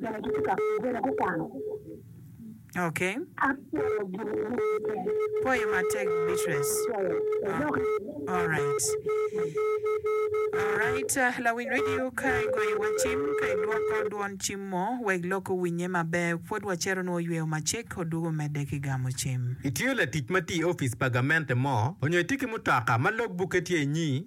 bene gitye ka bene gukwano. Okay. Apwoyo gin ducu. Pwoye matek Beatrice. Apwoyo. Wadok. Alright. Alright, lawiny radio ka igoyo wa cim, ka idwoko dwon cim mo wek lok owinye maber. Pwod wacito nwo yweyo macek odwogo medde ki gamo cim. Itiyo latic ma tye i opic pa gamente mo, onyo itye ki mutoka ma log bukke tye inyi?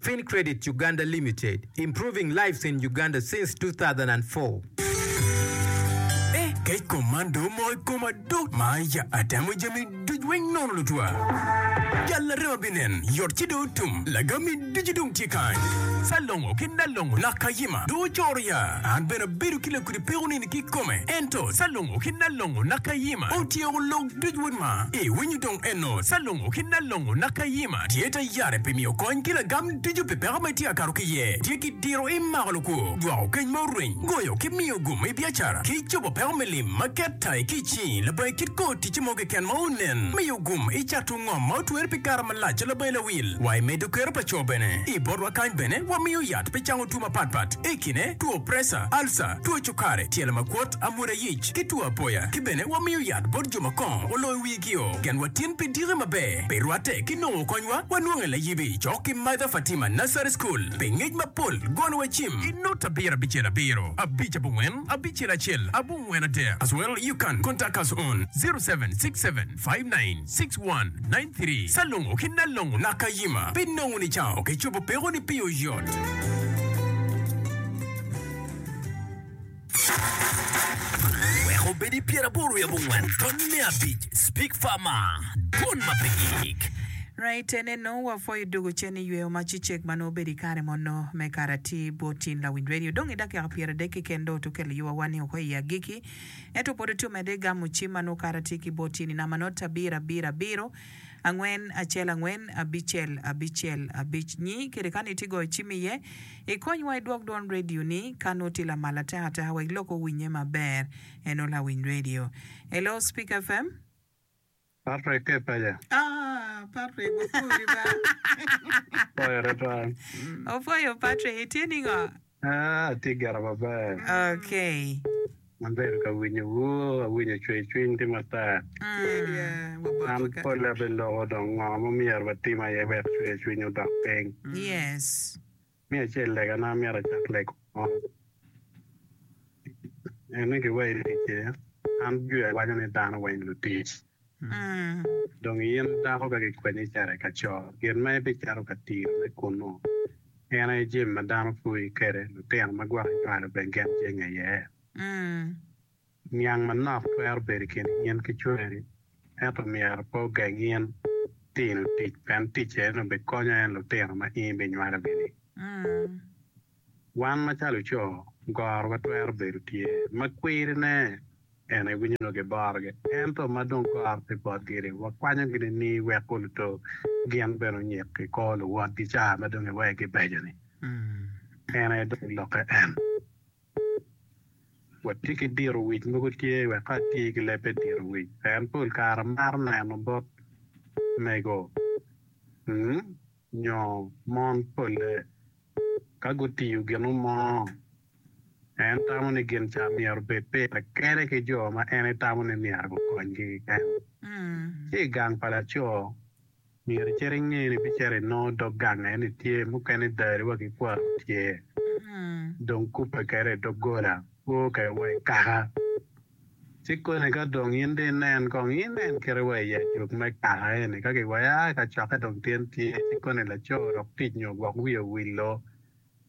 Fincredit Uganda Limited, improving lives in Uganda since 2004. Eh, kec kom man dong omoko i koma duu! Maya, atemo jami ducu weng nono lutwa. Jal arem abinen, yot ci dong otum, lagami ducu dong tye kany. Salongo ki Nalongo, Nakayima, dong ocoro ya, an bene abedo ki lakudi. pe onini ki kome, ento Calongo ki Nalongo naka Yima otyeko lok duc wod ma i winyo dong eno Calongo ki Nalongo naka Yima tye ta yare pi miyo kony ki lagam ducu pi peko ma itye akato ki ye tye ki diro i mako lukwo, jwako keny ma orwiny, goyo ki miyo gum i biacara ki cobo peko me lim ma ket ta i kic ni labongo i kit kor ticce mo keken ma onen, miyo gum i cato. Ngom ma otwer pi kare malac calo bayi lawil wa i medo kero pa co bene. I botwa kany bene wamiyo yat pi cango two mapat pat i kine two preca, alca, two cukari, tyelo makwot, amwoda yic ki two apoya ki bene wamiyo yat bot jo ma kongo oloyo wigi o gen wa tin pi diki maber pi rwate ki nongo kony wa wanwongo i layibi cok ki Mother Fatima Nursery School pi ngec mapol gono wa cim i nut abiro abicel abiro abic abongwen abicel acel abongwen adek as well you can contact us on zero seven six seven. 596193 Salongo ki Nalongo Nakayima pe nongo ni cawa oke cobo peko ni pii oyot. Wek obedi pyeraboro wiye abongwen ton me abic Speak Farmer Dwon ma pe gik. Right ene nongo wapwoyo dugu cen i yweyo ma cicek ma nongo obedo i kare mono me karati bot tin lawiny radio dong i dakika pyeradek keken dong otukel i yowa wa ni wako i agiki Ento pod atye omedde gamo cim ma nongo kara tye ki i bot tyenina ma nongo abiro abiro abiro angwen acel angwen abicel abicel abic nyi kede ka nongo itye goyo cim iye. Ikonywa idwog dwon radio ni ka nongo tye lamal ateka ateka wek lok owinnye maber. Eno lawiny radio. Hello Speaker FM. Patrick ki ipaja. Ah Patrick wapwori ba. Pwoyo tutwal. Opwoyo Patrick itye ningo? Ah atye gire maber. Okay. Abedo ka winyo wu awinyo cwer cwiny tye matar. Mm. An pole abeloko dong ngo ma myero watim aye wek cwer cwiny odok piny. Yes. Me acel, legana myero acak lego mo en ni giwairi ki cer. An Juda waco ni dano weng lutic. Dong in dako ka gikwenyi icito i kaco, gin ma ibicito ka tirone kunnu en aye jami ma dano puyi kwede, lutino ma gwok inywalo bene gin jenge iye. Niang manok twero bedo i kin in ki cwari, ento myero pe ogeng in tino tic pien ticce onongo bikonyo en lutino ma in ibinywalogi-ni. Wan macalo co, gorowa twero bedo tye ma kwirine en aye winyo nongo kiborogi, ento ma dong goro pe botgi-ni, wakwanyogi nining wek oluto gin bene onyik i kor luwotgi ca ma dong iwegi beco-ni? En aye dong lokke en. Watye ki diro wic mogo tye wek ka atye ki leb me diro wic pien pol kare amaro neno bot mego nyo mon pole ka gutiyo gino mo. En tamo ni gin ca myero obed pire kene ki jo ma en etamo ni myero gukonygi keken. Ci i gang pa laco, Myero icit inge ni bicito inongo dog gang aye ni tye mukene dari wa ki kwaro tye dong kubbe kede i doggola kwo kede wa i kaka ci koni ka dong in dong inen kong inen kite wa i ajok me kaka eni ka ki waya i kacokke dong tyen tye ci koni laco odok tic nyo gwok wiye owillo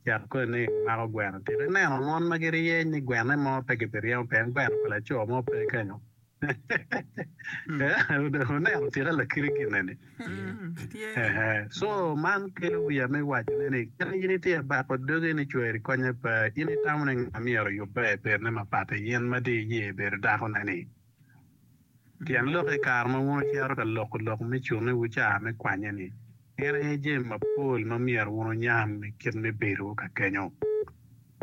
cet koni ni mako gweno tito ineno mon ma giryeny ni gwenne mo pe ki bi ryemo pien gweno pa laco mo pe kenyo. Wuneno tika lakiri gine ni? Co man kelo wiya me wacone ni kit ma in itye ka bako dogi ni cweri konye pe, in itamo ni nga myero oyubbe i bedone mapat i in ma dong iye bedo dakone-ni? Tyen lok i kare ma wun wucito ka loko lok me cunnewu ca me kwanye-ni, gin aye jami mapol ma myero wun wunyam i kit me bedowu ka kenyo.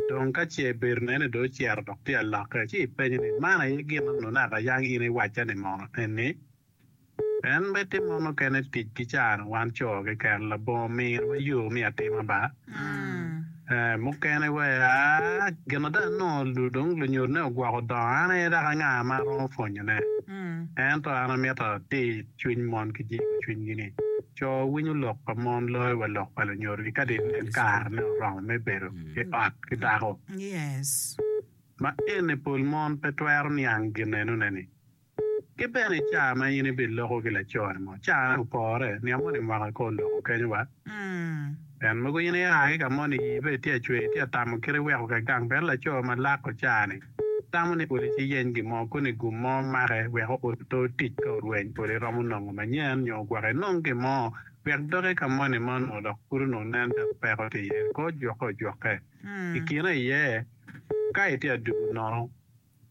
Dong ka ce bedo nene dong ocito dok tye alokke, ci ipenye ni, 'Man aye gin ma nongo naka yang in iwacca ni mono eni? En me timo mukene tic ki cano wan co keken, labongo mirowa yo me atima ba? Ee, mukene wea. Gin ada, nongo dong lunyodone ogwoko dongo an aye dok anga ma aromo pwonyone? Ento an amito atir cwiny mon ki jiko cwinygi-ni. Co winyo lok pa mon loyo wa lok pa lunyodogi ka dong en karene oromo me bedo i ot ki dako. Ma eni pol mon pe twero niang ginenone-ni. Ki bene i caa ma in ibiloko ki laconi mo, caane opore, niang moni mwaka kor loko kenyo wa. Pien mogo in ia ki ka moni, ii pe itye acwe, itye atamo kit iweko ka gang, pien laco ma lako caa-ni. Itamo ni odi ci yeny gin mo koni gum mo make wek oot oto tic ka orweny pol iromo nongo manyen nyo gwok inong gin mo wek doki ka moni ma onongo dok pud onongo nen calo peko tye iye ko jwoke ojwoke i kine iye ka itye adugu nono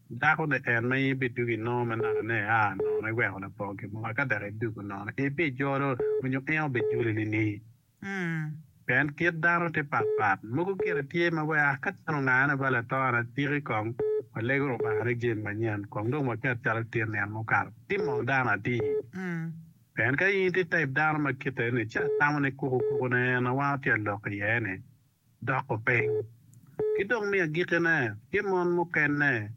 dako ni en ma in ibidugu inongo me naka ne aa nono iweko lapok gin mo eka dok idugu nono ibijolo onyo en obijoli ni ni. Pien kit dano tye pat pat, mogo kite tye ma wek a ka cen ongane ba lator atiki kong walego Lubanga ni jemi manyen kong dong waket calo tye nino mukato. Tim mono dano atir. Pien ka in tye type dano ma kite eni ci atamo ni kuku kuku ne en a wango tye alok iye ni, dok openy. Ki dong me agikkine, tye mon mukene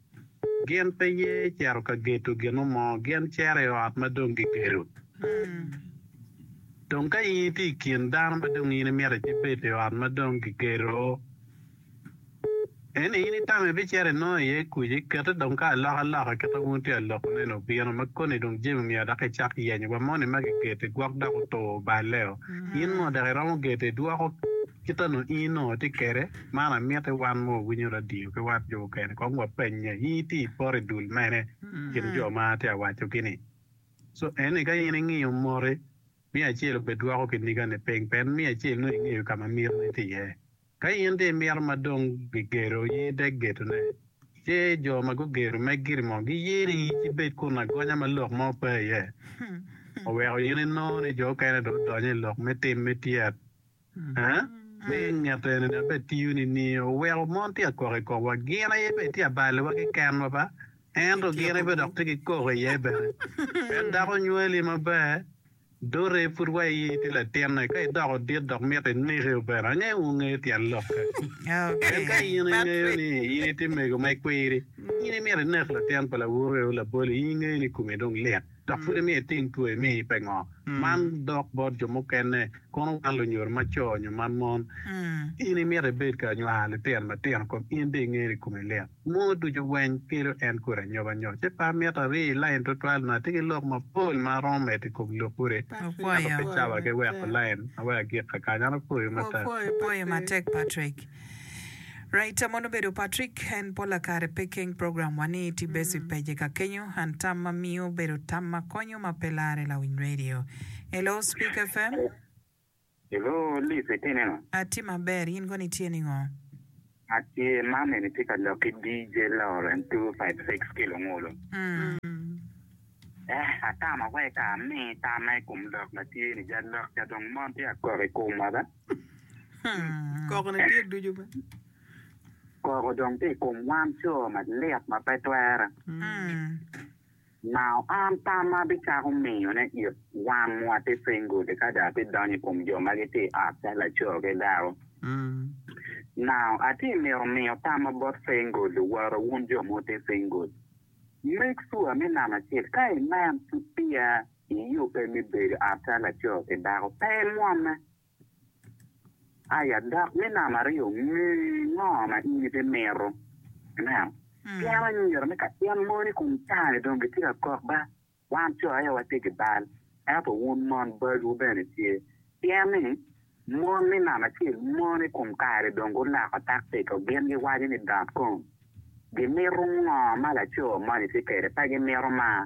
gin pe ye cito ka geto gino mo, gin cero i ot ma dong gigedo. Dong ka in itye i kin dano ma dong in imito ibed i ot ma dong gigedo, Eni in itamo ibicito inongo iye kuc, ikete dong ka alokaloka kit ma wun tye ka lokoneni obino, ma koni dong jami omyero dok icak yenyo wa moni ma gigeti gwok dok otur oballeo. In ngo dok iromo geto idwoko kit anu in inongo itye kede? Man amiti wan ma wawinyo radio ki wat jo mukene kong wa penye, in itye ipoto idul mene i kin jo ma atye ka wacogi-ni? Co eni ka in ingiyo moti, miyo acel obed dwoko kinigani piny pien miyo acel nongo ingeyo ka ma mitini tye iye. Ka in dong imito ma dong gigedo i iye dek gedone, ce jo ma gugedo me giri mo giyeni ci ibed kun agonya ma lok mo pe iye, ma weko in inongo ni jo okene dong odonyo i lok me tim me tyet. Mi i nget enini abed tiyo nining? Oweko mon tye ka kok i komwa. Gin aye bene tye ka balowa ki kenwa ba, ento gin aye bene dok tye ki kok iye bene. En dako nywali maber. Dote pud wa i idi latinne, ka idoko dit dok mito ineke obene, angeyo wungeyo tyen lokke. Pien ka in ingeyo ni in itye mego ma ikwiri, in imito inek latin pa lawukewu laboli, in ingeyo ni komi dong lit, dok pud imiyo itim two imi pe ngo. Man dok bot jo mukene, kono wan lunyodo ma co nyo ma mon, in imito ibed ka nywalo litino matino kom in dong ingeyo ni komi lit. Moo ducu weny kelo en kodi anyoba nyo ci pa mito ari i lain tutwal nyo atye ki lok mapol ma aromo medo i kom lok kodi ento pe cawa ki weko lain ma weko agik kakan an apwoyo matek. Apwoyo matek Patrick. Raita mono bedo Patrick en pola kare pe keng program wa ni ti bes i page ka kenyo and tam ma miyo bedo tam ma konyo ma pe lare lawiny radio. Hello Speak FM. I loo lip itineno. Atye maber in kono itye ningo? Atye mam eni tye ka lok ki DJ Lawrence two five six ki Lungulu. Ehh atama weka ami tamma i kom lok matye ni ja lok ca dong mon tye ka kok i komwa ba. Koko ne tye ducu ba. Koko dong tye i kom wan coo malit ma pe twere. Nao an tam ma abicako miyone it wan wa ti piny gudi ka dong ati donyo i kom jo ma giti i ot calo laco ki dako. Nao ati mito miyo tamma bot piny gudi woro wun jo mo ti piny gudi. Make sure me namba acel ka inen ki piya iyubbe mi bedo i ot calo laco ki dako pe imwomme. Aya dok me namba aryo, nge ngo ma in bi mito. Amen. Pien anyira me ka in moni kun tange dong gitye ka kok ba, wan co aye watye ki bal, ento wun mon balwu bene tye. Pien ni, mon me namba acel mon i kom kare dong guloko takciko, gin giwaco ni dot kong. Gimito ngo ma laco moni tye kwede, pe gimito mar.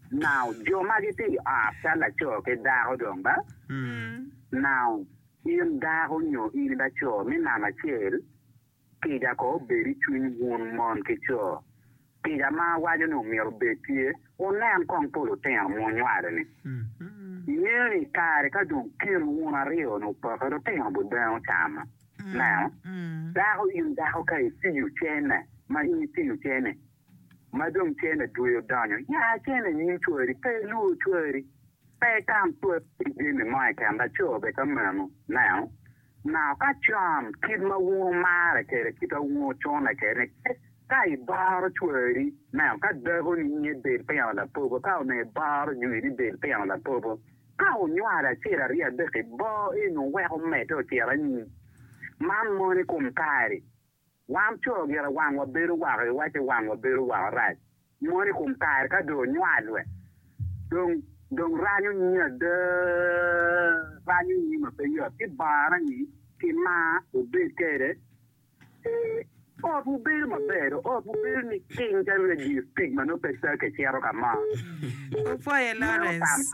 Now, jo magi ti ot cal laco ki dako dong ba? Now, in dako nyo in ba co mi namba acel, kica ko obed i cwiny wun mon ki co. Kica ma awaco ni omyero obed tye, wunen kong pol lutino ma wunywalo-ni. Ingeyo ni i kare ka dong kin wun aryo-ni opoke, lutino bot dong ocamo. Now, dako, in dako ka itiyo cene, ma in itiyo cene, Ma dong cene tweyo donyo, ya cene i nyim cwari, pe ilur cwari, pe itam cwari ki jami mo keken, laco bene ka meno. Neno, naka ka con, kit ma wunu marre kwede, kit ma wunu cune kwede, kit ka ibaro cwari, neno, ka dakoni nyiye bed tino lapogo, ka onongo ibaro jwini bed tino lapogo, ka onywalo acel, aryo, adek, iboo eno wek omedde ocit anyim. Man mono i kom kare. Wan co gire wangwa bedo woko i owac ci wangwa bedo woko rac mono i kom kare ka dong onywal we dong dong ranyo nyi ada, ranyo nyi ma pe yot ci bongana ni ki mar wubed kede ci ot wu bedo ma ber do ot wu bedo ni cing calo radio speak ma nongo pe take cito ka mo. Opwoye Lawrence.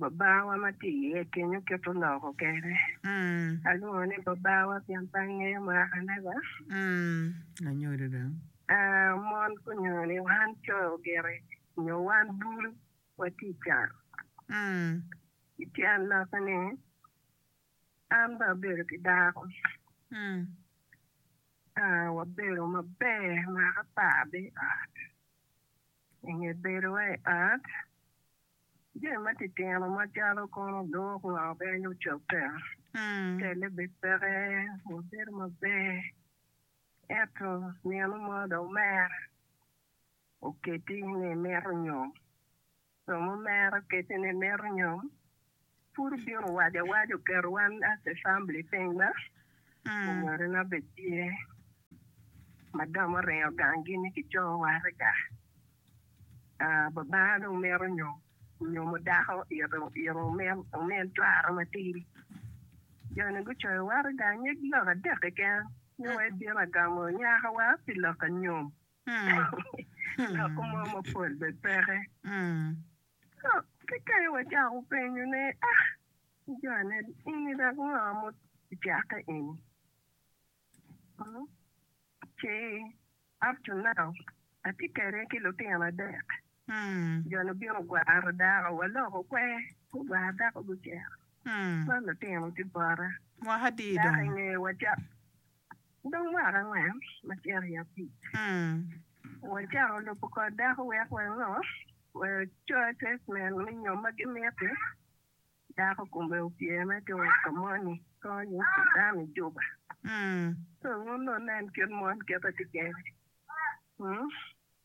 Babawa ma tye iye i piny oketo loko kene. Alwongo ni Babawa pien pe angeyo mwaka nega. Mon onyo ni wan co ogiti onyo wan bul watye i can. I tyen lokke ni an bene abedo ki dako. Wabedo maber mwaka apar bene i ot. I nge bedowa i ot, jami matitino macalo kono odok nga obed ni ocobbe, telle obed peke, wabedo maber. Ento nino mo dong omera oketi ni imito nyom. Romo omera oketi ni imito nyom, Pud obino owaco awaca oketo wan as a family piny ma onyorina bene tye madam oringo gang gi ni kicoyo wate ka babana dong mito nyo nyomo dako ito omin cwara matidi jo ni gucoyo wate gang nyig lok adek keken ni wa ibino agamo nyaka wa pi lok anyom lok mo mapol bene peke. Kekeni wacako penyone, A! Janed, ini dok ngo ma ocake eni? Ci, Up to now, atye kede ki lutino adek. Joni obino gwaro dako, waloko kwer, gugwaro dako gucito. Man lutino tye bota. Dako i ngewa ca. Dong mwaka angwen ma cito i abic, wacako lubo kor dako wek wango? Wacoces neno ni nyo ma gimiti dako kome opye me to wek ka moni konyo dano i juba. Wun wuneno kit mon kit ma tye kene.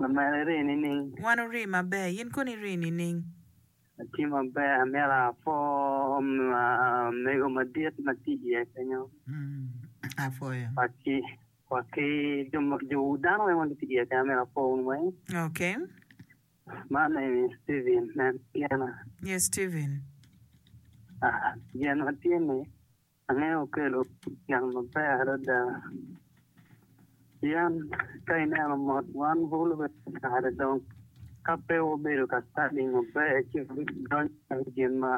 Lamela iri nining? Wan ori maber. Yin kono iri nining? Atye maber. Amyero apwoo mego madit ma tye iye kenyo. Apwoyo. Wa ki jo dano weng ma gitye iye kenyo. Amyero apwo wun weng. Okay. My name is Steven. En Piena. Yes, Steven. Gin ma tye ni. Angeyo okelo tyen maber adada pien ka ineno mot wan bulu bene kare dong ka pe wabedo ka study maber ci wadonyo i gin ma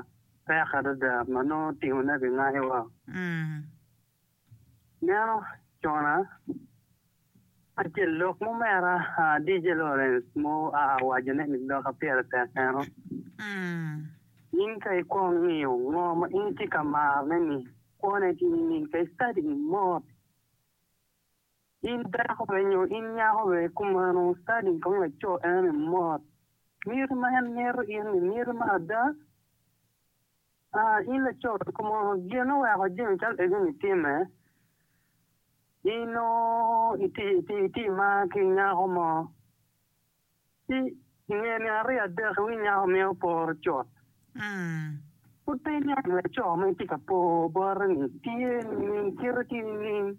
pek adada ma nongo timone bingayowa. Meno cona Acel lok mo mera DJ Lawrence mo a awaco ne ni doka pire tek eno, in ka i kwong ngiyo ngo ma in itye ka maro ne ni kwo ne tye nining ka i study ni mot in dako be nyo in nyako be kumeno study kong laco eno ni mot miti ma en mito in ni miti ma ada. A In laco ducu mo, gin ma weko jami calo egoni timme, in nongo iti ma ki nyako mo, ci i nge nino aryo adek iwiny nyako meno oporo cut. Pud pe iniang ni laco ma itye ka po bote-ni tye nining, kite tye nining?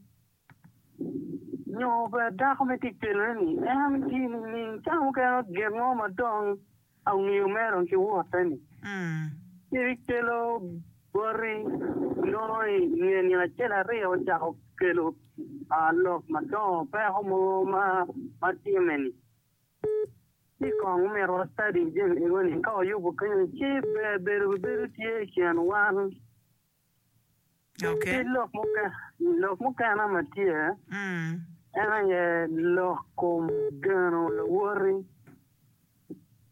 Nyo bene dako me tic penore ni, En tye nining ka mukene ogen mo ma dong angiyo mere dong ki wote-ni? Ci rik kelo boti nongo i nge nino acel aryo ocako kelo lok madongo peko mogo ma timme-ni. Ci kong omito wa study jami ego-ni ka wayubo kenyo-ni ci ber bedo bibedo tye i kin wan. Ki lok mukene ma tye, en aye lok kom geno lawoti.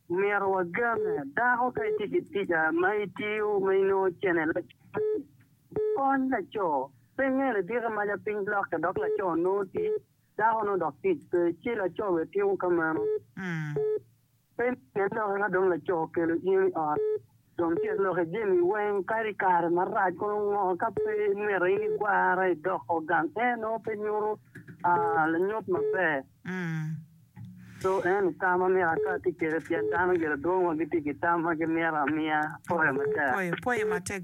Myero wagene. Dako ka itye ki tic ma itiyo ma inongo cene laco-ni, kony laco. Pe ingeyo ni diki maca piny lokke dok laco nongo tic, dako nongo dok tic pe, ci laco bene timo ka meno. Peny pien lokke ka dong laco okelo in i ot, dong tyek lokke jami weng kadi kare marac kono ngo ka pe imito in igwara idoko gang eno pe nyuto lanyut maber. So eno tam ma myero aka tye kede pien dano giladwong wa gitye ki tam ma gimito amiya. Apoyo matek.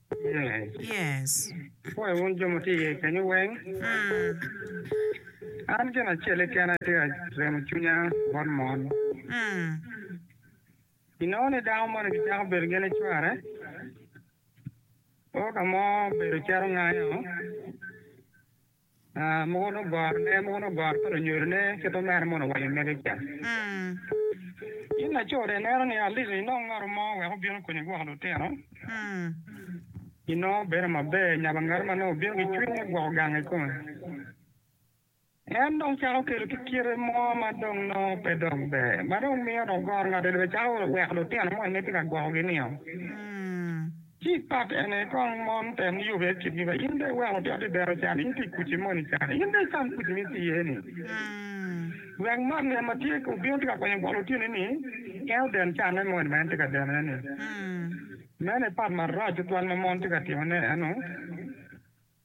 Pwoyo wun jo ma tye iye kenyu weng. An gin acel keken aye tye ka remo cwinya bot mon. I nongo ni dako moni gicako bedo gin icware, koo ka mo bedo cito ngayo. Mogo onongo gorone, mogo onongo goro pa lunyodone, kit ma mere mono owaco mege ca. In laco de ineno ni aliko inong ngatu mo wek obin okonyi gwoko lutino? Inongo bedo maber nyabo ngatu ma nongo obino ki cwiny me gwoko gang i kome. En dong cako kelo ki kite mo ma dong nongo pe dok ber, ma dong miyo dong goro ngati dong bene cako weko lutino moni ma itye ka gwokogi-nio. Ci pat en aye kong mon te yube i kitgi wa in bene iweko obyot i dero can in ti kuci moni can in bene icam kuci mi ti iye ni wek man ne ma tye ki obino ti ka konyo bolo otyeni ni en oden can ne moni ma en ti ka deno iye ni meno aye pat marac tutwal ma mon ti ka timo ne eno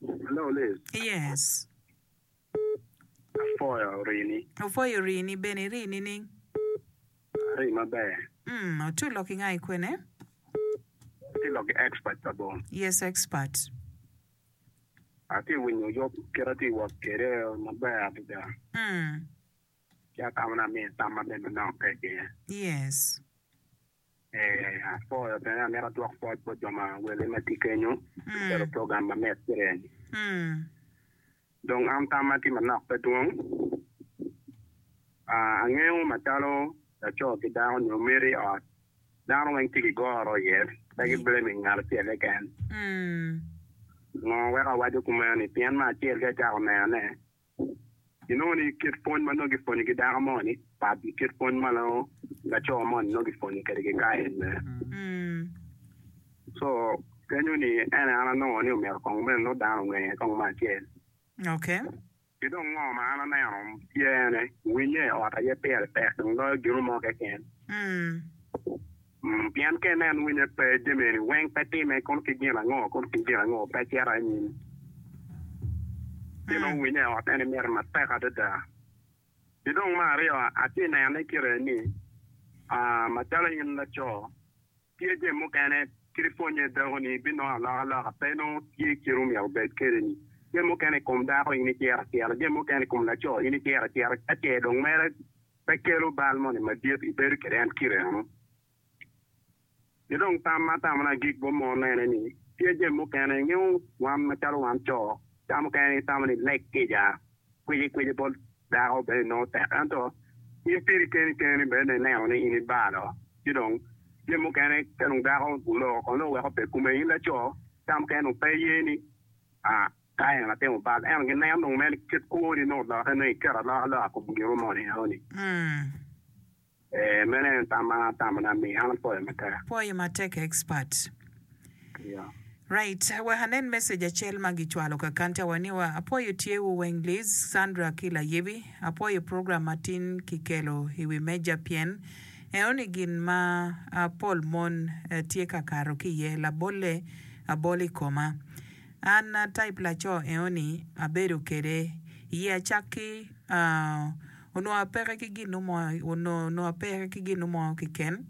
Hello Liz. Yes. Apwoyo rini. Opwoyo rini bene. Iri nining? Ari maber. Mm, ati olok inga i kwene? Ati lok i expert pa bong. Yes, expert. Ati winyo yub kit ati wot kede maber adada. Mm. Ci atamo na miyo tam maber manok keke. Yes. Apwoyo bene amito adwok pwoc bot jo ma wele ma tye kenyo pi calo program ma metere ni. Dong an tamma tye manok pe dwong. Angeyo macalo laco ki dako nyo miti i ot dano weng tye ki goro iye pe ki blaming ngat acel keken. Ngo weko awaco kumeno ni pien me acel ka icako nenone Ginongo ni kit pwony ma nongo gipwonyo ki dako mo ni pat ki kit pwony ma nongo laco mo ni nongo gipwonyo kede ki ka en mere. So kenyo ni en an anongo ni omyero kong mene nongo dano onge kong me acel. Ki dong ngo ma an aneno tye ene, winya i ot aye pire tek dong loyo gino mo keken. Pien ka inen winye pe, jami eni weng pe time, kono ki gin ango, kono ki gin ango pe cito anyim. Ci nongo winye i ot eni mere matek adada. Ki dong me aryo, atye nene kite ni, macalo in laco, tye jami mukene kit ipwonye dako ni ibinongo aloka loka pe nongo tye kit omyero obed kede ni. Jami mukene i kom dako in iciro acira, jami mukene i kom laco in iciro acira, ka ce dong mere Pe kelo bal moni madit ibedo kwede en kite eno. Ki dong tam ma atamona agik bot mon ene ni, tye jami mukene ingeyo wan macalo wan co, ca mukene itamo ni lek kica, kwici kwici bot dako bene inongo tek ento in piri keni keni bene ineno ni in ibalo. Ci dong jami mukene ka dong dako oloko kono dong oweko pe kume in laco, ca mukene dong pe iye ni, aa. Ka en atimo bal, ento ginen dong meno ikit kwoni me olokke nongo iket aloka loka kom gin mo ni eno ni. Ee, meno en tam ma atamo ni ami, an apoyo matek. Poyo matek expert. Yeah. Right, wek anen message acel ma gicwalo kakanta wa ni wa, apoyo tye wu weng Liz, Sandra ki Layibi, apoyo program ma tin ki kelo i wi meja pien eno ni gin ma pol mon tye ka kato ki iye labolle abol i koma. An a type laco eoni abedo kede iye acak ki onongo apeke ki ginu mo onongo apeke ki ginu mo kiken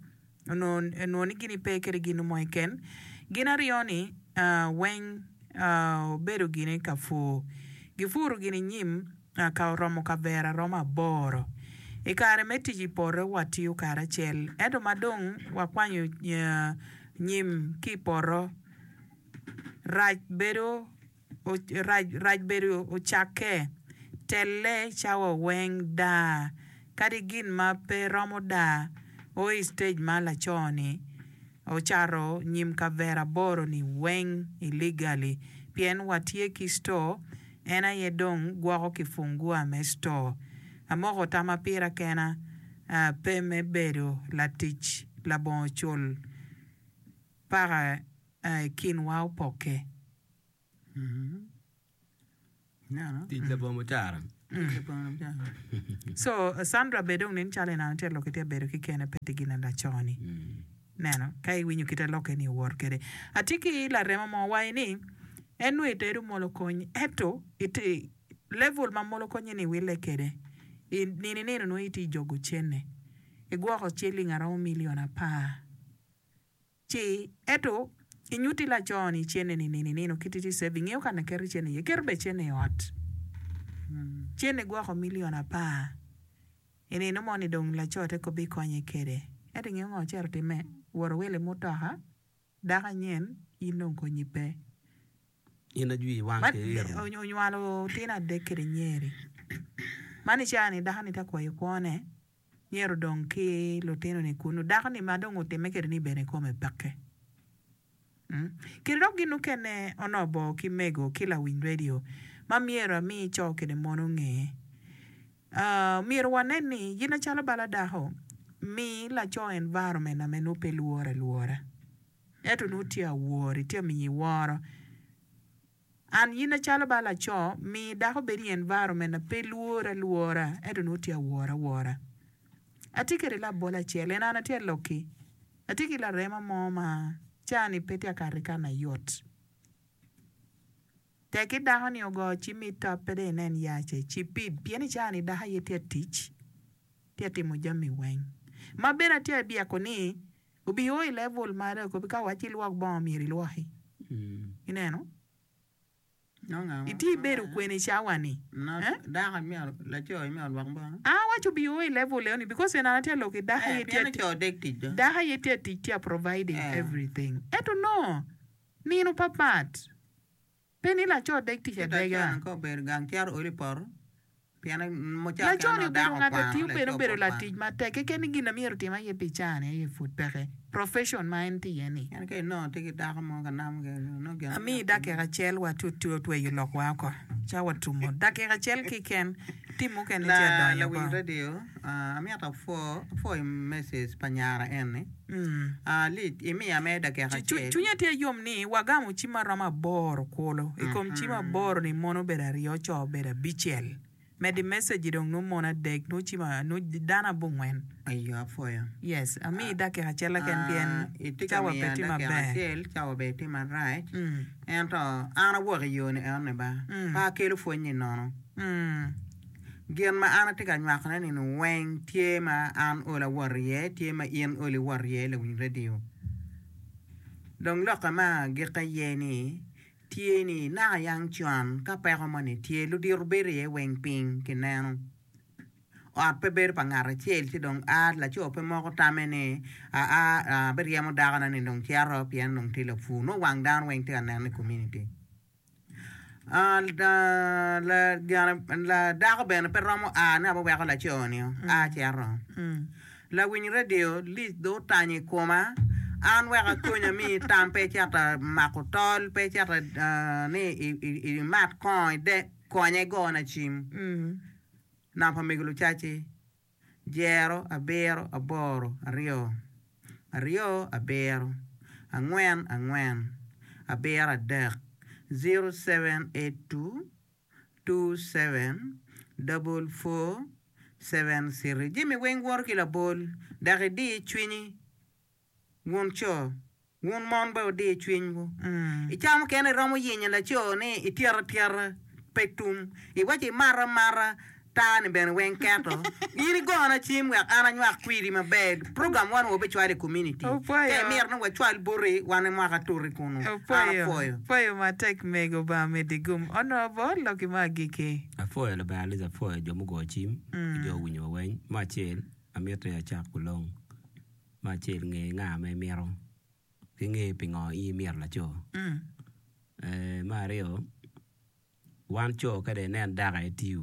onongo ni gini pe kede ginu mo kiken gin aryo ni weng obedo gini ka pur gipuro gini nyim ka oromo kavera romo aboro ikare me tic ipoto watiyo kare acel ento madong wakwanyo nyim ki poto Rac bedo rac rac bedo ocakke, telle cawa weng daa, kadi gin ma pe romo daa o i stage ma laco ni ocato nyim kavera aboro ni weng illegally pien wa tye ki store en aye dong gwoko ki fungua me store. Amoko tama pira kena pe me bedo latic labongo cul paka. A I kinwa opokke. Tic labongo mucara. So Sandra bene dong nen calo enano tye lok tye bedo ki kene pe tye gin laco ni neno ka iwinyo kite loke ni owor kede atye ki laremo mo waye ni en nongo itedo molo konyi eto ite level ma molo konyi ni wile kede i nini nino nongo itye jogo cene igwoko ciling aromo million apar Ci, ento, inyutti laco-ni cene ni nino i nino kit iti ceving, ingeyo kan aketo i cene iye? Keto bene cene i ot. Cene gwoko milion apar. I nino mo-ni dong laco te kobbe ikonye kwede. Ento ingeyo ngo ocito timme? Woro wilo i mutoka, dako anyen, in dong konyi pe. Maria onywalo otino adek kede nyeri. Man i cawa-ni dako-ni tye ka kwayo kwone, myero odong ki lutino-ni kunnu. Dako-ni ma dong otimme kede ni bene kome peke. Kede dok gin mukene onongo bor ki mego ki lawiny redio ma myero ami co kede mon onge. Myero wanen ni gin acalo bala dako, mi laco environment-na me nwo pe lworo alwora. Ento nongo tye awor, itye amiyo iworo An. Yin acalo bal laco, mi dako bedo i environment na pe lwore alwora, ento nongo tye awor awora. Atye kede labola acel, en An atye aloki. Atye ki larema mo ma cawa ni pe tye ka kato i kare na yot. Tek ki dako ni ogo ci mi top pe dong inen yace, ci pid, pien i cawa ni dako aye tye atic, tye atimmo jami weng. Ma bene atye abyeko ni Gubioo i level ma dong kobbi ka owacci ilwok bongo myero ilwoki. Ineno? Itye ibedo kwene i cawa-ni? An awaco obioo i level eno-ni because en an atye ka lok ki dako aye tye ka tic, dako aye tye ka tic tye ka providing everything. Ento nongo nino papat. Pe ni laco odeg tic adega. Laco-ni obedo ngat ma tiyo bene obedo latic matek. Keken ni gin na myero otim aye pi caa-ni aye pud peke, profession ma en tye iye-ni. Amiyi dakika acel wa tut-tu otweyo lokwa oko ca watumo. Dakika acel keken, tim mukene ci adonyo oko. Cwinya tye yom ni wagamo cim ma romo aboro kulu. I kom cim aboro-ni, mon obedo aryo, co obedo abicel. Medo i message-ci dong nongo mon adek, nongo dano abongwen. Amiyi dakika acel keken pien cawa pe tye maber. Gin ma an atye ka nywakone ni nu weng tye ma an ol awot iye tye ma in ol iwot iye lawiny radio. Dong lokke ma agikke aye ni tye ni naka yang con ka peko moni tye ludito bedo iye weng piny ki neno. Ot pe bedo pa ngat acel ci dong a laco pe moko tame ni aa abiryemo dakona ni dong cito pien dong tye lapur nongo wang dano weng tye ka neno i community. Dako bene pe romo a ni aye weko laco-ni a cito. Lawiny redio lic dong otanyo i koma an wek akony ami tam pe icito mako tol, pe icito ni imat kongo, konye igona cim nam pa mego lucaci. Dyero abiro aboro aryo aryo abiro angwen angwen abiro adek zero seven eight two two seven double four seven three jami weng woto ki labol dok idi cwinyi. Wun co, wun mon bene wudir cwinywu. I cawa mukene iromo yenyo laco ni ityeta atyeta, pe tum. Iwaco imata amata, tar-ni bene weng keto. In igona cim wek an anywak kwidi maber. Program one wa bicwalo i komuniti. Ka imito ni wacwal boti, wan imoko atuti kunnu. An apwoyo. Pwoyo matek mego Lubanga medi gum onongo bot loki me agikki. Apwoyo Lubanga Liz apwoyo jo mugo cim ki jo owinyo wa weny. Me acel amit ni acak kulong. Me acel nge nga ma imito ki nge pingo in imito laco. Me aryo wan co kade inen dako etiyo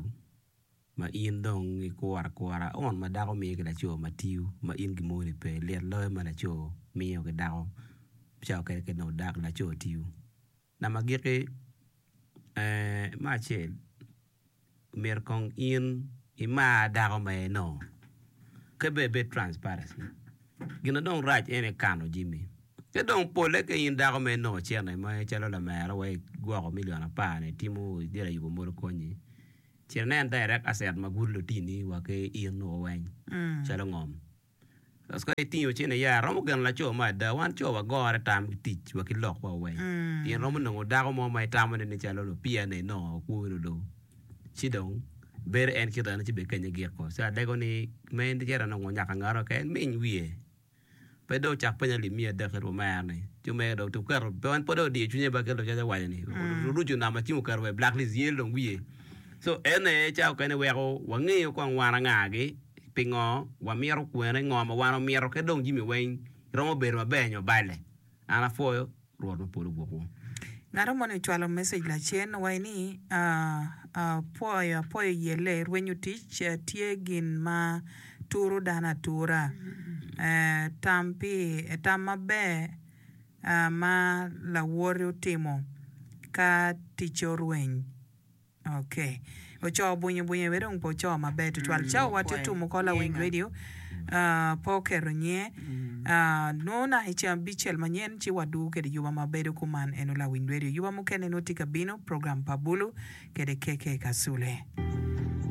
ma in dong ikuro akura on ma dako miyo ki laco ma tiyo ma in gimoni pe lit loyo ma laco miyo ki dako cawa kede kede onongo laco tiyo. Nam agikki, Ee, me acel, myero kong in imar dako ma eno. Ka be ibed transparency. Gin ma dong rac en aye kano jami. Ka dong polle ka in dako ma eno ocene ma calo lamera wa igwoko million apar ni itimo idiro ayubo modo konyi, cen inen direct asset ma gudo lutini wa ki in nwo weng calo ngom. Kato ka itingo cene ya romo geno laco mo ada. Wan co wagore tam ki tic wa ki lok wa weng. Pien romo nongo dako mo ma itamo ne ni calo lupia ne nongo okwo wunu do. Ci dong bedo en kit eno ci be kenye gik ko. Ci adego ni me en cito nongo nyak angara oke en miny wiye. Pe do ocak penya lim miya adek kit omera ni. Ci omege do otum keto pe en pe do odiyo cwinye ba kit lucac awaco ni. Oruco nama ci oketo wa i black list yel dong wiye. So ene ca okene weko wangeyo kong wan anga gi. Pingo wamito kwene? Ngo ma wan wamito? Kadi dong jimi weng romo bedo maber nyo balle? An apwoyo Rwot ma polo gwok wu. Ngato moni ocwalo message lacen waci ni apwoyo apwoyo yelle rwenyo tic tye gin ma turo dano atura tam pi tam maber ma lawoti otimo ka ticce orweny. Ocoo bwinyo bwinyo aye dong pe ocoo maber tutwal cawa wa tutum oko lawiny radio pe oketo nyinge nongo naka i ceng abicel manyen ci wa dugu kede yuba ma bedo kuman eno lawiny radio yuba mukene nongo tye ka bino program pa bulu kede KK Kasule.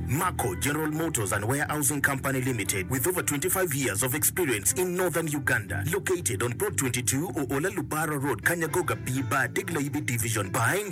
Mako, General Motors and Warehousing Company Limited with over 25 years of experience in Northern Uganda located on plot 22 Oola Lubara Road Kanyagoga B Bar Degla Yibi Division buying,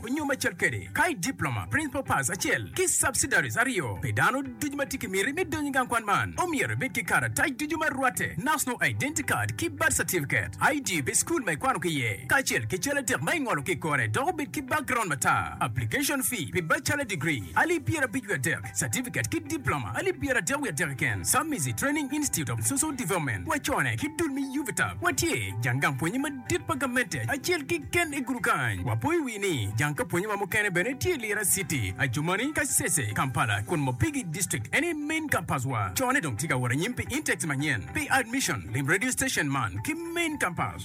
Nyo me cal kede, ka i diploma, principal pass acel ki subsidiaries aryo pi dano ducu ma tye ki miti me donyo i gang kwan man, omyero ibed ki karatac ducu ma rwatte, National Identity Card ki Birth Certificate, ID pi school ma ikwano ki iye, kacel ki cal adek ma ingolo ki i kore dok obed ki background matar. Application fee pi bachelor degree, alip pyerabic wiye adek. Certificate ki Diploma alip pyeratek wiye atek keken, Submizi Training Institute of Social Development, wacone ki dul me UVTAB. Watye jang gang pwonye madit pa gamente acel keken i gudu kany. Wapo i wi ni jang ka pwonye wa mukene bene tye i Lira City, Adjumani, Kasese, Kampala, kun Mopigi District eni main campus wa. Cone dong tye ka wot anyim pi intakes manyen. Pi admission, lim radio station man ki main campus.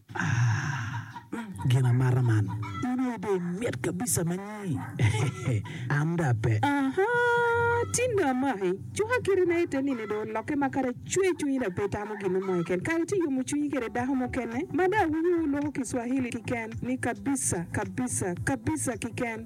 Aah gin amata man. In aye dong imit kabisa ma nyi eeh an dong ape. Ahaa tin dong amaki cuka kite na ite nini dong oloke ma kara cwer cwinyi dong pe itamo ginu mo keken kara ci iyomo cwinyi kede dako mukene ma dong awinyo wulwoko kiswahili kiken ni kabisa kabisa kabisa kiken.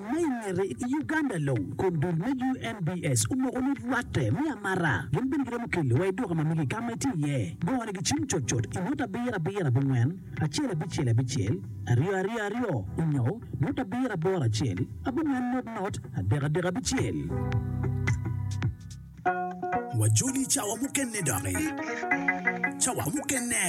Ma i ngete, i Uganda long, kom dul me UNBS omoko ni rwatte me amara gin bene giromo keli wa i duka ma mege ka ma itye iye. Gone gicim cot cot i ngut abiro abiro abongwen acel abicel abicel aryo aryo aryo onyo ngut abiro aboro acel abongwen not not adek adek abicel. Wajoli cawa mukene doki. Cawa mukene.